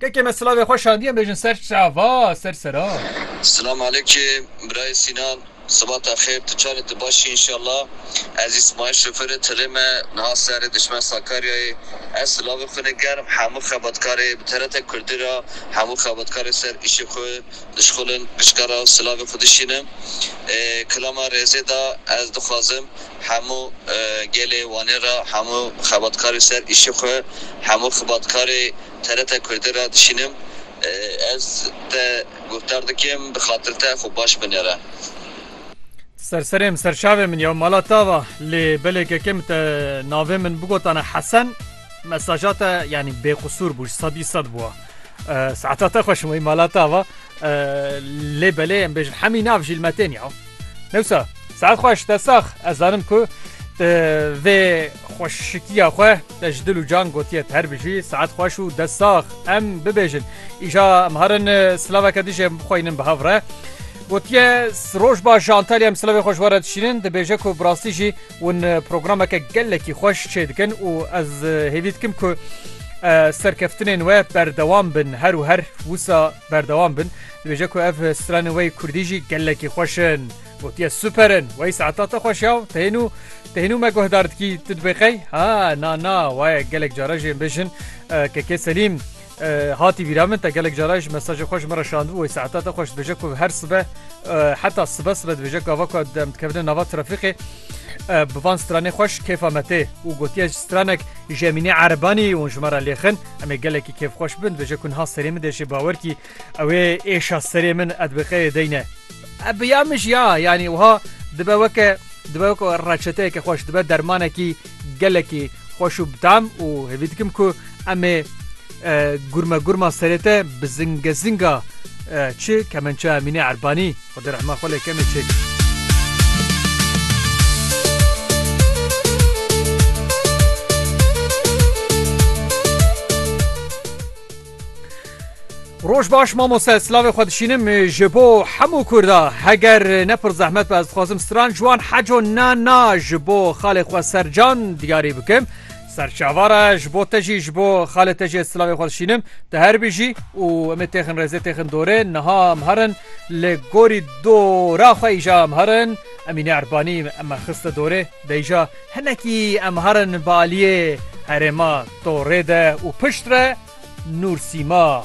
Kekê me silavê xwe şadiyan bêjin ser çava ser sera. Silam aleyke birayê Sînan sibata xêr tu çar î tu baş î înşallah ez Îsmaîl şofêrê tilê me niha serê dişmen Sakaryayê ez silavê xwe ne germ hemû xebatkarê bi TRT kurdî ra hemû xebatkarê ser îşê xwe dişxulin giçka ra silavê xwe dişînim ê kilama rêzê da ez dixwazim hemû gelê wanê ra hemû xebatkarê ser îşê xwe hemû xibatkarê TRT Kurdî re dişînim. Ez te guhdar dikim bi xatir te xwe baş binêre. Ti ser serê min, ser çavê min ya mala te ava. Lê belê kekê min te navê min bigotane Hesen, mesaja te yanî bêqusûr bû, sedî sed bûa. Saeta te xweş wî mala te ava. Lê belê em bêjin hemî nav jî li me tên ya. Newsa saet xweş te sax ez zanim ku te vê xweşikiya xwe te ji dil û can gotiye te her bijî saet xweş û dest sax em bibêjin îja em harin silaveke dijê em bixweynin bi hev re gotiye roj baş ji Antalya em silavê xweş were dişînin dibêje ku bi rastî jî win programeke gelekî xweş çê dikin û ez hêvî dikim ku serkeftinên we berdewam bin her û her wisa Berdewam bin, dibêje ku ev stranên we yê kurdî jî gelekî xweş in. Gotiye super in, wey saeta te xweş ya û te hênû te hênû me guhdar dikî, tu dibê qey? Ha na na waye gelek caran jê bijin KK Selîm hatî bîra min te gelek caran ji mesajê xwe ji min re şandibû wey saeta te xweş dibêje ku her sibe heta sibe sibe dibêje gava ku em dikevine nava trafîqê Bi van stranê xweş kêfa me tê û gotiye ji stranek ji Emîne Erebanî û ji me re lêxin em ê gelekî kêfxweş bin dibêje ku niha serê min de jê bawer kî ew ê êşa serê min ed bi qeyê deyne. Eb ya min jî ya yanî wiha dibe weke dibe weke reçeteyeke xweş dibe dermanekî gelekî xweş û bi tam û hêvî dikim ku em ê Gurme gurma serê te bi zinge zinga çi kemençeya Mînê Erbanî Xwedê rehma xwe lê kenê çêk. Roj baş mamoste slavê xwe dişînim ji bo hemû Kurda heger ne pir zehmet be ez dixwazim stran ji wan heco na na ji bo xalê xwe sercan diyarî bikim. Serçava re ji bo te jî ji bo xalê te jî ez silavê xwe dişînim. Tu her bijî û em ê têxin rêzê têxin dorê. Niha em her in li gorî dora xwe îja em her in. Emîne Erbanî em me xiste dorê. De îja hinekî em her in bi aliyê herêma torê de û pişt re Nûrsîma.